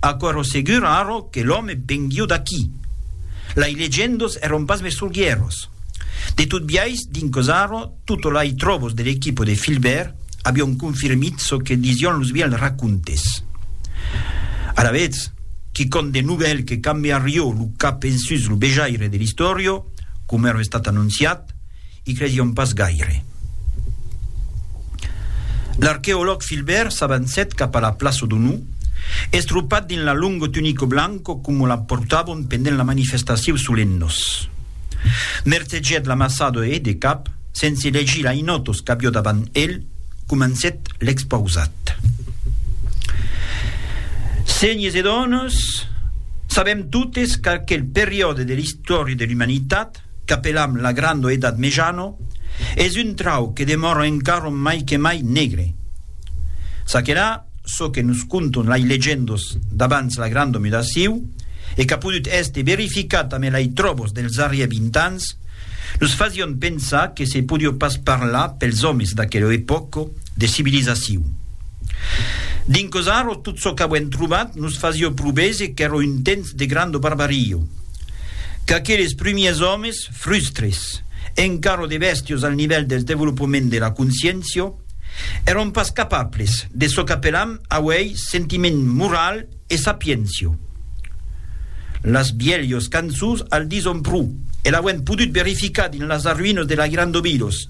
Aquero segur arro que l'òme venguiu d'aquí. Lai legendos èron pas mesturguieros. De tot biais, dinquòs arro, tot lai tròbos de l'equipo de Filbèrt avion confirmit çò que disión los vièlhs racontes. Alavetz, quicòm de novèl que cambiarió lo cap ensús lo vejaire de l'istòrio, coma èra estat anonciat, I credion pas gaire. L'arqueològ Filbèrt s'avancèt cap a la plaça d'Onu, estropat dins la longo tunico blanco coma la portavon pendent la manifestacion Solennos. Mertegèt l'amassado e, de cap, sense legir l'ainotos qu'avió davant el, comencèt l'expausat. Senhors e donas, sabèm totes qu'aquel periòde de l'istòria de l'umanitat, qu'apelam la grando edat mejano, es un trauc que demòra encara mai que mai negre. Ça que là, çò que nos conton lai legendos d'abans la grando mudaciu, e qu'a podut èster verificat amé lai tròbos dels arrier 20 ans, nos fasión pensar que se podió pas parlar pels òmes d'aquela epòca de civilizaciu. Dinc Ozaro tot çò qu'avuem trobat nos fasió pro veser qu'èra un temps de grando barbario. Qu'aqueles prumièrs òmes, frustres, encara de bèstios al nivèl del devolopament de la consciéncia, èron pas capables de çò qu'apelam auèi sentiment moral e sapiéncia. Las bièlhos cançons al dison pro, e l'auem podut verificar dins las arruïnas de la Gran Dobidos.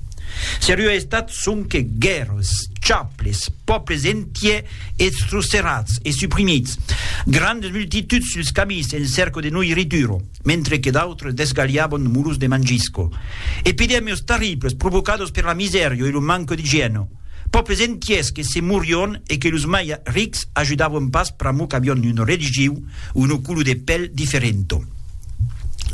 Seriá estat sonque guèrras, chaples, pòbles entiers Eths trusterats e suprimits, grandes multituds suls camis en cerco de noirrituro, mentre que d'autres desgalhabon mulos de mangisco. Epidèmios tarribls provocados per la misèrio e lo manco d'igièno. Pòples entiers que se morion e que los mai rics ajudavon pas pr'amor qu'avion un religiu o una color de pèl diferento.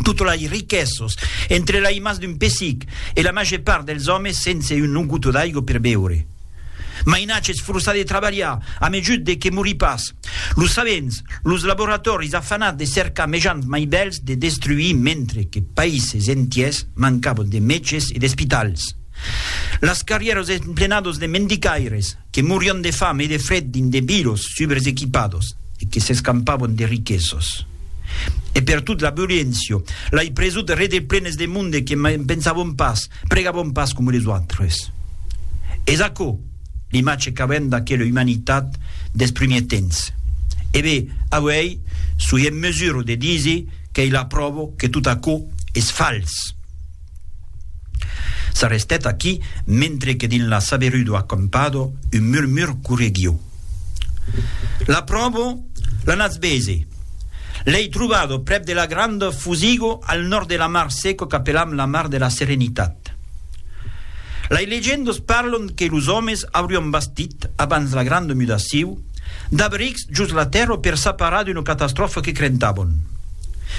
Totes lai riquesos entre lai mas d'un pessic e la màger part dels òmes sense un noguto d'aigo per beure. Mainatge es forçat de trabalhar a mejut de que morí pas. Los sabents, los laboratòris afanats de cercar mejans mai bèls de destruir mentre que païses entiers mancavan de mètges e d'espitals. Las carrièras emplenadas de mendicaires que morián de fam e de fred dins de vilos subres equipados e que s'escampavan de riquesas. E pertot la violéncia, lai presut rede plenes de monde que mai pensavan pas Pregavon pas coma les autres. Es aquò l'imatge qu'avèm d'aquela umanitat dels primièrs temps. E be, avuèi soi en mesura de díser qu'ei la pròva que tot aquò es fals. S'arrestèt aquí, mentre que dins la saberuda acampada un murmur correguiu. L'apròvo, la natz bese. L'ei trobado prèp de la granda Fusigo al nòrd de la mar seco qu'apelam la mar de la Serenitat. Lei legendas parlan que los òmes aurián bastit, abans la granda mudaciu, d'abrics jos la tèrra per s'aparar d'una catastròfa que crentavan.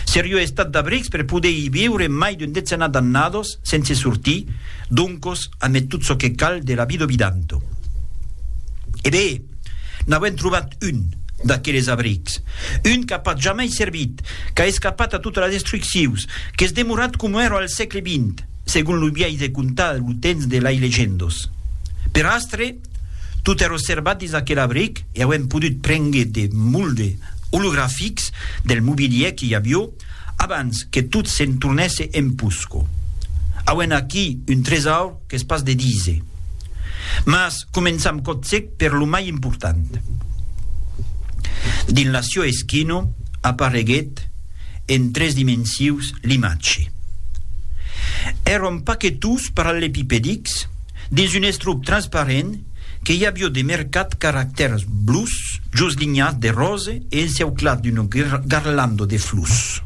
Seriá estat d'abrics per poder i viure mai d'un decenat d'annadas, Sense sortir, doncos, amé tot çò que cal de la vida obidanto. E be! N'avèm trobat un, d'aqueles abrics. Un qu'a pas jamai servit, qu'a escapat a totas las destruccions, qu'es demorat coma èra al sègle vint, segon lo biais de contar lo temps de lai legendos. Per astre, tot èra servat dins aquel abric e auem podut prengre de molde olografics del mobilièr que i avió, Abans que tot se'n tornèsse en Pusco. Auem aquí un tresaur qu'es pas de díser. Mas començam còtzec per lo mai important. Dins la Sio Eschino apareguèt en tres dimensius l'imatge. Èron pas que tous parallepipedics, Dins un estrup transparent que i avió de mercat caractèrs blus just linhats de rose e enceuclat d'una garlanda de flus.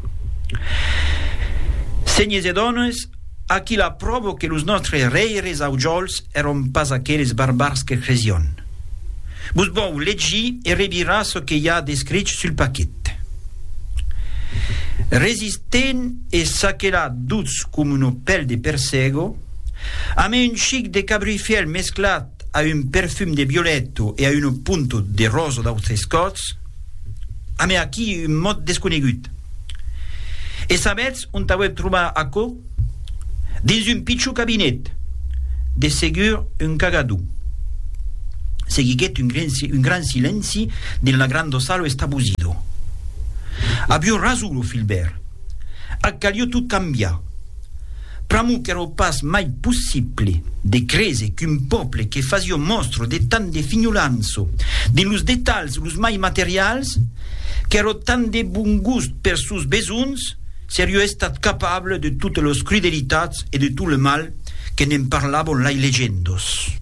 Senhes e dones, aquí la pròva que los nòstres rèires aujòls èron pas aqueles barbars que cresión. Vos vòu legir e revirar çò que i a d'escrich sul paquet. Resistent e saquelat duts coma una pèl de persègo, A mai un chic de cabrifièl mesclat a un perfum de violèto e a una punta de rosa d'autres còps, a mai aquí un mot desconegut. E sabètz ont auèp trobar aquò? Dins un pichon cabinet, de segur un cagador. Seguiguèt un un gran silenci dins la granda sala estabosida. Avió rason lo Filbèrt. Ac calió tot cambiar. Pr'amor qu'èra pas mai possible de créser qu'un pòble que fasió mòstra de tant de finholança dins los detalhs los mai materials, qu'èra tant de bon gust pers sòus besonhs, serió estat capable de totes los crudelitats e de tot le mal que ne'n parlavon lai legendas.